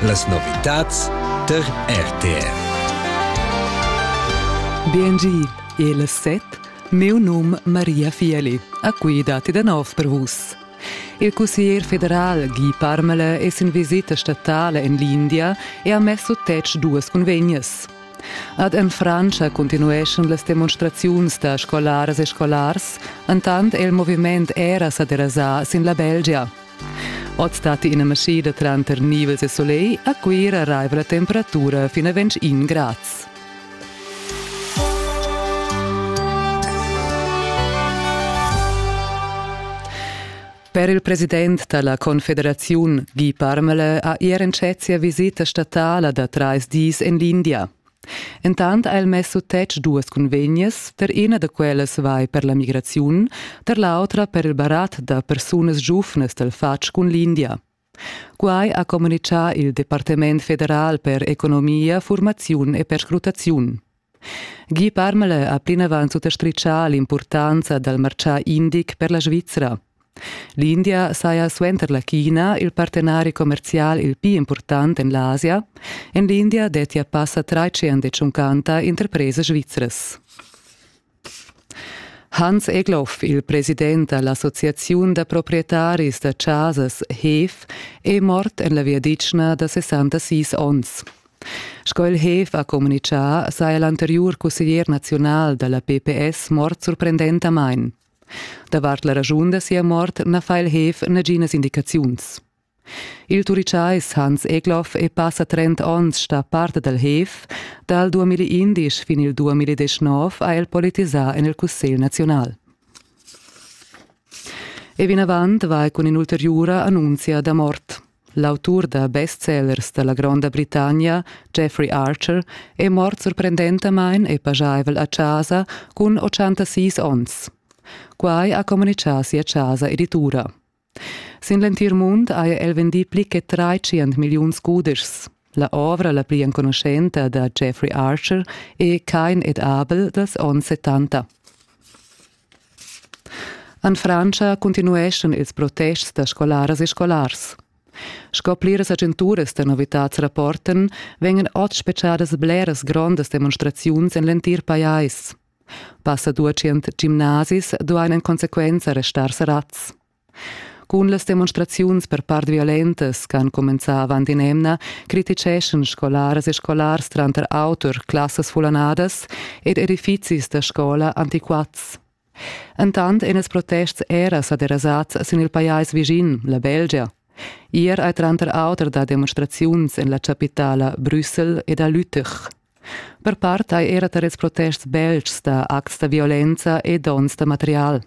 Las novitads tar RTR. Biengi, il set, meu num Maria Fieli, a cui dati da nov per vus. Il cussier federal Guy Parmele es in visita statale en l'India e ha messo tec duas convegnes. Ad en Frantscha continueschan las demonstraziuns da scolaras e scolars, entant è il moviment era sa derasà sin la Belgia. Oz datti ina maschida tranter nivels e solegl, a Cuira raiva la temperatura fin a 21 grads. Per il president da la Confederaziun Guy Parmele ha er entschet sia visita statala da trais dis en l'India. Entant ha el mess sut tetg duas cunvegnas, per ina da quellas vai per la migraziun, per l'autra per il barat da persunas giuvnas dal fatg cun l'India. Quai ha communitgà il Departament federal per economia, formaziun e perscrutaziun. Guy Parmele ha plinavant suttastritgà l'impurtanza dal martgà indic per la Svizra. L'India saja suenter la China il partenari commerzial il pli impurtant en l'Asia. En l'India dettia passa tratschient e tschuncanta interpresas svizras. Hans Egloff, il president da l'associaziun da proprietaris da chasas HEF, è mort en la viadichna da 66 onns. Sco il HEF ha communitgà, saja l'anteriur cusseglier naziunal da la PPS mort surprendentamain. Davart la raschun da sia mort na fa il Heef naginas indicaziuns. Il Turichais Hans Egloff è passa trent onns stà part dal Heef. Dal 2011 fin il 2019 ha el politisà en il Cussegl naziunal. E vinavant vai cun in'ulteriura annunzia da mort. L'autur da bestsellers da la Gronda Britannia, Geoffrey Archer, è mort surprendentamain e pajaivel a chasa cun 86 onns. Quai ha communitgà sia chasa editura. Sin l'entir mund haja el vendì pli che tratschient milliuns cudeschs. La ovra la pli enconuschenta da Jeffrey Archer è Kein et Abel dals onns 70. En Frantscha continueschan ils protests da scolaras e scolars. Sco pliras agenturas da novitads rapportan, vengan oz spechadas bleras grondas demonstraziuns en l'entir pajais. Passa duecent gimnasis duain en consequenza restar serrads. Cun las demonstraziuns per part violentas ch'han cumenzà avant in'emna criticheschan scolaras e scolars tranter auter classas fullanadas ed edifizis da scola antiquats. Entant èn ils protests era sa derasads sin il pajais vischin, la Belgia. Ier hai tranter auter dà demonstraziuns en la chapitala Brüssel ed a Lüttich. Per part hai era tar ils protests beltgs dà acts da violenza e donns da material.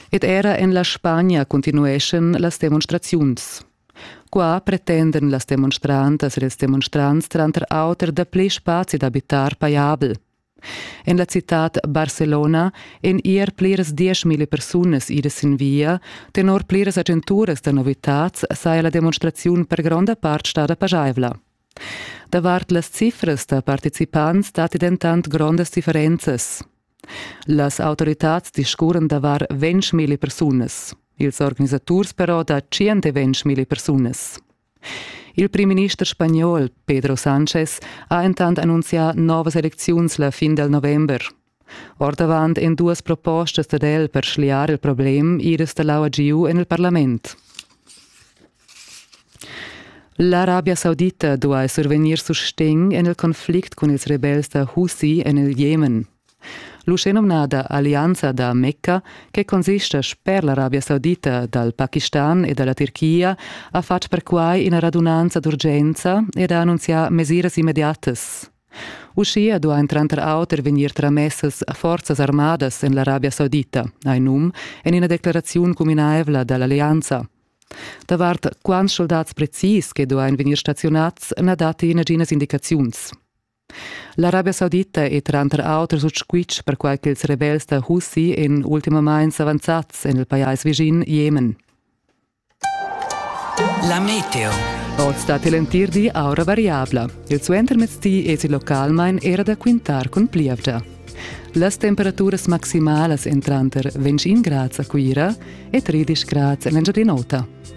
Ed era en la Spagna continueschan las demonstraziuns. Qua pretendan las demonstrantas ed ils demonstrants tranter auter dapli spazi d'abitar pajabel. En la citad Barcelona èn ier pliras dieschmilli persunas idas sin via. Tenor pliras agenturas da novitads saja la demonstraziun per gronda part stada paschaivla. Davart las cifras da participants datti dentant grondas differenzas. Las autoritads discurran davar ventg milli persunas. Ils organisaturs però da tschient e ventg milli persunas. Il primminister spagnol Pedro Sanchez ha entant annunzià novas elecziuns la fin dal november. Ordavant èn duas propostas dad el per schliar il problem iras da l'aua giu en il parlament. L'Arabia Saudita duai survegnir sustegn en il conflict cun ils rebels da Houthi en il Jemen. L'uschenumnada Allianza da Mecca, che consista sper l'Arabia Saudita dal Pakistan e da la Tirchia, ha fatg perquai ina radunanza d'urgenza ed ha annunzià mesiras immediatas. Uschia duain tranter auter vegnir tramessas forzas armadas en l'Arabia Saudita, hai num en ina declaraziun cuminaivla da l'allianza. Davart quants soldats precis che duain vegnir staziunads na datti naginas indicaziuns. L'Arabia Saudita è tranter auter sut squitsch perquai ch'ils rebels da Houthi èn ultimamain s'avanzads en il pajais vischin Jemen. La meteo. Oz datti l'entir di aura variabla. Il suentermezdi èsi localmain era da quintar cun plievgia. Las temperaturas maximalas èn tranter 20 grads a Cuira e 13 grads en l'Engiadin'Ota.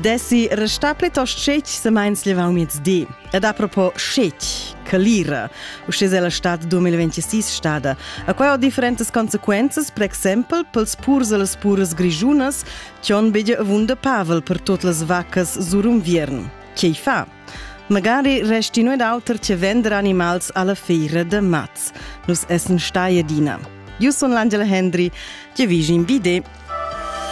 Desi restà plitost scetg se meins levau di. Ed a propo scetg, calira, usce se la stat 2026 stada, a quai ho differentes consequences, per exempel, pels purs e las puras grigiunas, che on bege avunda pavel per tot las vacas sur un viern. Che fa? Magari resti noi d'auter che vender animals alla feira de maz. Nus essen stai adina. Io sun l'Angela Hendry, che vigi in vide.